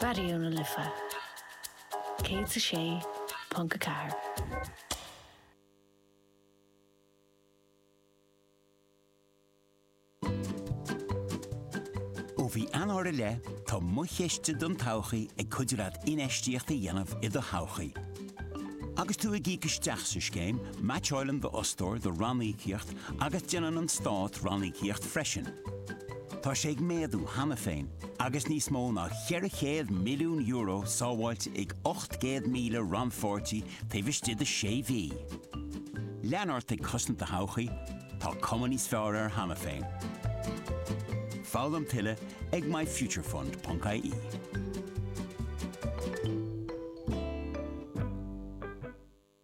Raidió na Life 106.4. Ó mhí Eanáir i leith, tá Mo Chiste don Todhchaí ag cuidiú leat infheistíocht a dhéanamh i do thodhchaí. Agus tú ag íoc isteach sa scéim, meaitseáileann d'fhostóir do ranníocaíocht agus déanann an Stát ranníocaíocht freisin. Tá sé ag méadú cheana féin agus níos mó ná €400 milliún sábháilte ag 800,000 rannpháirtí taobh istigh de sé mhí. Lean ort ag cosaint do thodhchaí, tá cuma níos fearr air cheana féin. Foghlaim tuilleadh ag myfuturefund.ie.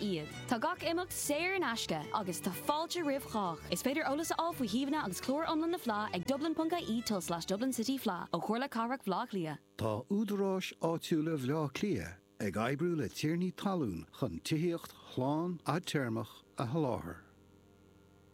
iad. Tá gach imeacht saor in aisce agus tá fáilte roimh chách. Is féidir eolas a fháil faoi shuíomhanna agus clár iomlán na Fleá ag dublin.ie tulslais Dublin City Fleadh ó Chomhairle Cathrach Bhleá Cliath. Tá Údaráis Áitiúla Bhleá Cliath ag oibriú le tiarnaí talún chun tithíocht shlán fhadtéarmach a sholáthar.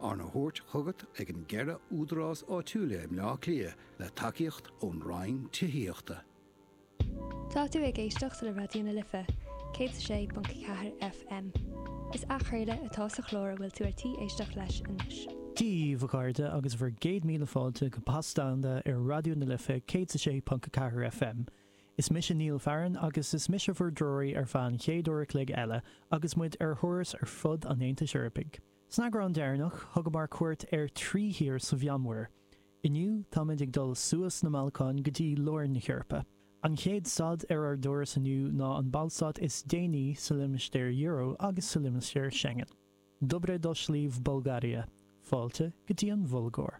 Arna thabhairt chugat ag an gceithre údarás áitiúil i mBleá Cliath le tacaíocht ón Roinn Tithíochta. Tá tú ag éisteacht le Raidió na Life, 106.4 FM. Is athchraoladh atá sa chlár a bhfuil tú ar tí éisteacht leis anois. Díbh, a chairde, agus bhur gcéad míle fáilte go Pas Domhanda ar Raidió na Life 106.4 FM. Is mise Neil Farren agus is mise bhur dtreoraí ar feadh an chéad uair a chloig eile agus muid ar thuras ar fud an Aontais Eorpaigh. San eagrán deireanach, thugamar cuairt ar thrí thír sa Mheánmhuir. Inniu, táimid ag dul suas na mBalcán go dtí lár na hEorpa. An chéad stad ar ár dturas inniu ná an ballstát is déanaí sa limistéar euro agus sa limistéar Schengen. Dobre doshli v Bolgaria! Fáilte go dtí an Bhulgáir!